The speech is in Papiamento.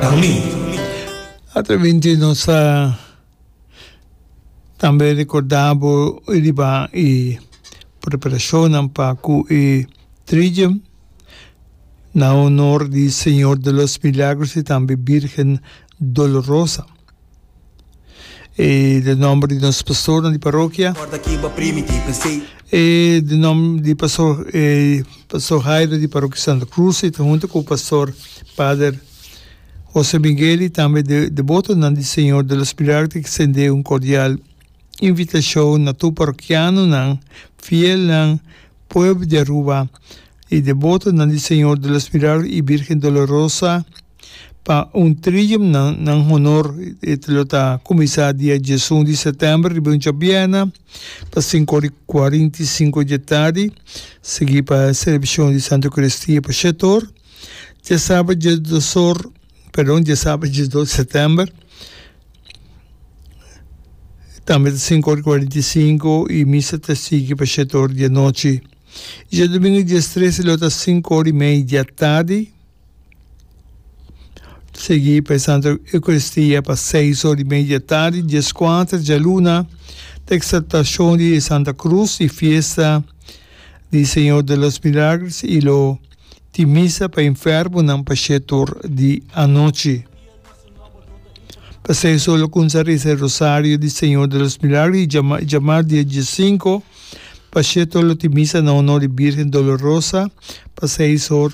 Dahomey. Atravente nos ta tambe recorda bo riba e preparacionnan pa cu e trilla na honor di Señor de los Milagros y tambe Virgen Dolorosa. E de nomber di nos pastornan di parokia. E de nomber di pastor pastor Hairo di parokia Santa Cruz e ta hunta cu pastor pader Jose Miguel y tambe de debotonan di Señor de los Milagros ta extende un cordial invitacion na tur parokianonan fielnan pueblo di Aruba y debotonan di Señor de los Milagros y Virgen Dolorosa Pa un trium nan nan honor e lo ta kuminsá dia diesun di sètèmber riba un djabièrna pa sinku ora i kuarenta i sinku di tardi, sigui pa e selebrashon di Santu Eukaristia pa shet or. Dje sabat dje dos or, perdon, dje sabat dje dos di sètèmber tambe ta sinku ora i kuarenta i sinku i misa ta sigui pa shet or di anochi. I dje dumingu dies tres e lo ta sinku ora i mei di atardi. Sigui pa e Santa Eucaristia pa seis ora y media di tardi, diescuater djaluna, ta Exaltacion di e Santa Cruz y Fiesta di Señor de los Milagres y lo tin Misa pa enfermonan pa shie tur di anochi. Pa seis ora lo cumsa reza e Rosario di Señor de los Milagres y djama djamar di e diesinco, pa shie tur lo tin Misa na honor di Virgen Dolorosa pa seis ora.